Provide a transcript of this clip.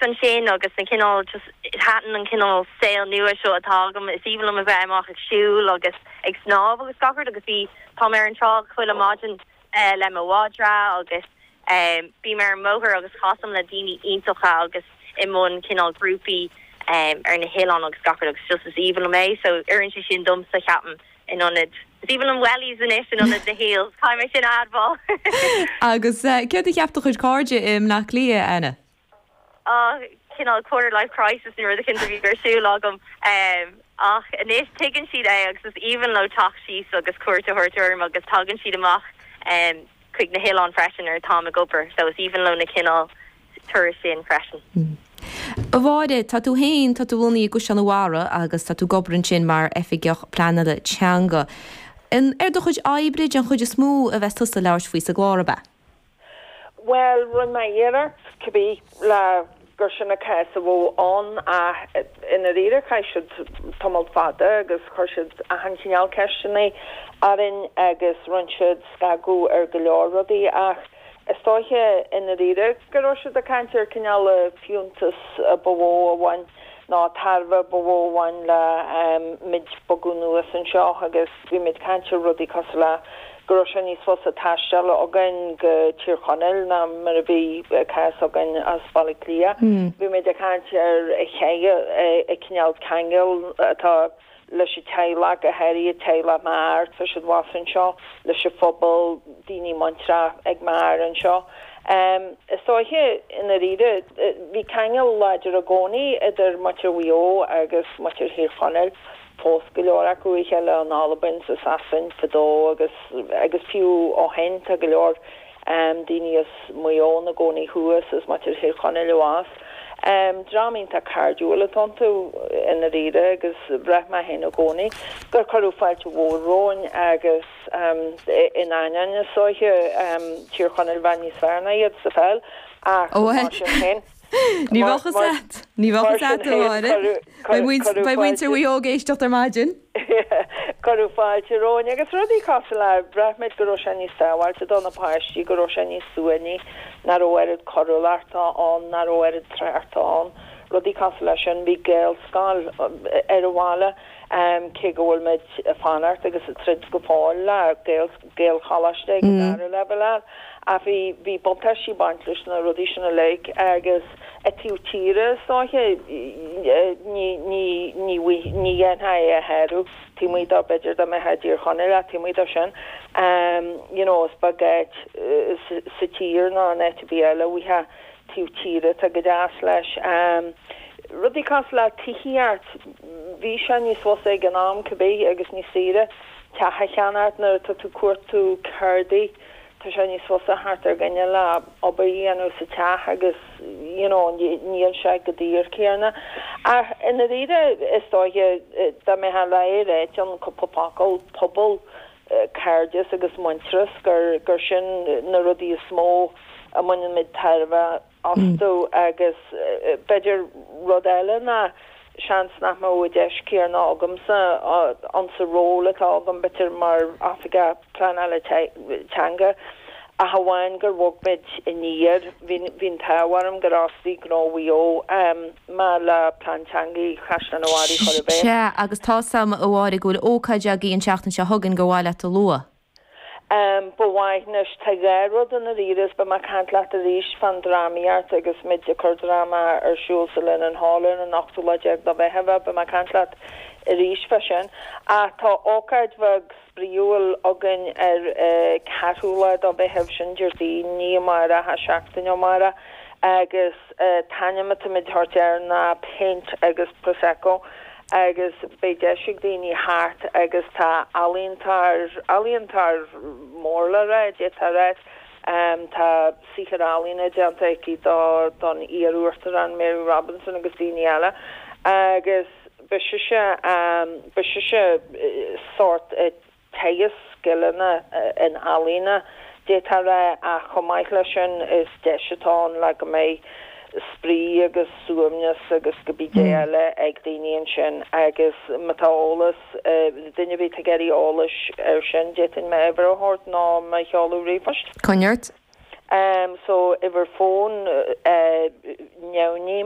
ansin agus na cineál just thaitin an cineál saol nua seo atá agam is aoibhinn liom a bheith amach ag siúl agus ag snámh agus gach rud agus bhí táim ar an trá chuile maidin le mo mhadra agus bím ar an mbóthar agus casaim le daoine iontacha agus i mbun cineál grúpaí ar na hoileáin agus gach rud agus just is aoibhinn liom é so oireann sé sin domsa ceapaim in ionad is aoibhinn liom wellies anois in ionad na heels caithfidh mé sin a admháil! Agus céard a cheap do chuid cairde i mBleá Cliath, Anna? ah, cineál quarter life crisis nó rud eicint a bhí ar siúl agam. Em, ach anois tuigeann siad é agus is aoibhinn leo teacht síos agus cuairt a thabhairt orm agus tagann siad amach, em, chuig na hoileáin freisin nuair atáim ag obair so is aoibhinn leo na cineál turais sin freisin. M, A Mháire, tá tú féin, tá tú i do chónaí i gCaisleán a' Bharraigh agus tá tú ag obair ansin mar Oifigeach Pleanála Teanga. An ar do chuid oibre den chuid is mó a bheas tusa ag labhairt faoi sa gclár ab ea? Bhuel, rinne mé iarracht, cibé, le gur sin an cás a bhí ann ach i ndáiríre chaith siad tamall fada agus chuir siad achan chineál ceisteanna orainn agus rinne siad scagadh ar go leor rudaí ach is dóiche i ndáiríre go raibh siad ag caint ar cineál an fiúntas ba mhó a bhain nó an tairbhe ba mhó a bhain le muid bogadh anuas anseo agus bhí muid ag caint ar rudaí cosúil le go raibh sé níos fusa taisteal againn go Tír Chonaill ná mar a bhí an cás againn as Baile Átha Cliath. Bhí mé ag caint ar an chineál ceangail atá leis an teaghlach, go háirithe teaghlach m'athar, tá siad abhus anseo leis an phobal, daoine muinteartha ag m'athair anseo. Is dóiche i ndáiríre, bhí ceangal láidir i gcónaí idir muintir Mhaigh Eo agus muintir Thír Chonaill. Phós go leor acu a chéile in Albain, is i Sasain fadó agus agus fiú ó shin. Tá go leor daoine as Maigh Eo ina gcónaí thuas, is muintir Thír Chonaill abhus. Dream iontach cairdiúil atá iontu i ndáiríre agus bhraith mé féin i gcónaí gur cuireadh fáilte mhór romhainn agus in ainneoin is dóiche Tír Chonaill a bheith níos fearr ná iad sa pheil ach mar sin féin. Ní bheadh a fhios a'd. Ní bheadh a fhios a'd a Mháire. Beidh muintir Mhaigh Eo ag éisteacht ar maidin. Cuireadh fáilte romhainn agus rudaí cosúil le, bhraith muid go raibh sé níos sábháilte do na páistí, go raibh sé níos suaimhní, nach raibh oiread coiriúlachta ann, nach raibh oiread tráchta ann, rudaí cosúil leis sin. Bhí Gaelscoil ar an bhaile, cé go bhfuil muid ag fanacht agus ag troid go fóill le Gaelscoil. Gaelcholáiste ag an dara leibhéal ann ach bhí bhí buntáistí ag baint leis na rudaí sin uilig agus i taobh tíre is dóiche ní ní ní ní dhéanfadh é a shárú taobh amuigh do b'fhéidir dá mbeifeá i dTír Chonaill ach taobh amuigh do sin you know is beag áit sa tír ná an áit a bheireadh uaithi taobh tíre tá go deas leis rudaí cosúil le tithíocht bhí sé níos fusa ag an am cibé agus níos saoire. Teach a cheannacht nuair atá tú ag cuartú ceardaí, tá sé níos fusa theacht ar dhuine le obair a dhéanamh sa teach agus you know níl sé chomh daor céanna. Ach i ndáiríre is dóiche dá mbeifeá le ráit i gcúpla focal pobal, cairdeas agus muintearas gur sin na rudaí is mó a mbaineann muid tairbhe astu agus b'fhéidir rud eile ná seans nach mbeadh an deis chéanna agamsa insa ról atá agam, b'fhéidir mar Oifigeach Pleanála Teanga ach amháin gur bhog muid aniar. Bhí an t-ádh orm gur fhostaigh Gnó Mhaigh Eo mé le Plean Teanga Chaisleán an Bharraigh a chur i bhfeidhm. Sea, agus tá's a'm a Mháire go bhfuil ócáid againn an tseachtain seo chugainn gur mhaith leat a lua. Am, Ba mhaith, Anois tá dhá rud i ndáiríre beidh mé ag caint leat arís fán drámaíocht agus muid ag cur dráma ar siúl sa Linenhall ar an ochtú lá déag de Mheitheamh, beidh mé ag caint leat arís fá sin. Ach tá ócáid bheag spraíúil againn ar an cheathrú lá de Mheitheamh, sin Déardaoin, ní amárach, ach seachtain ó amárach agus an t-ainm atá muid a thabhairt air ná Paint agus Prosecco. agus beidh deis ag daoine theacht agus tá ealaíontóir, ealaíontóir mór le rá, d'fhéadfá a rá, tá saothair ealaíne déanta aici do, don iar-uachtarán Mary Robinson agus daoine eile agus beidh sise, beidh sise sórt. teagasc scileanna ealaíne, d'fhéadfá a rá, ach chomh maith leis sin is deis atá ann le go mbeidh spraoi agus suaimhneas agus cibé eile ag daoine ansin agus ma tá eolas, duine ar bith ag iarraidh eolais ar sin d'fhéadfainn m'uimhir a thabhairt nó mo sheoladh ríomhphoist. Coinnigh ort. Em so uimhir fón eh, náid.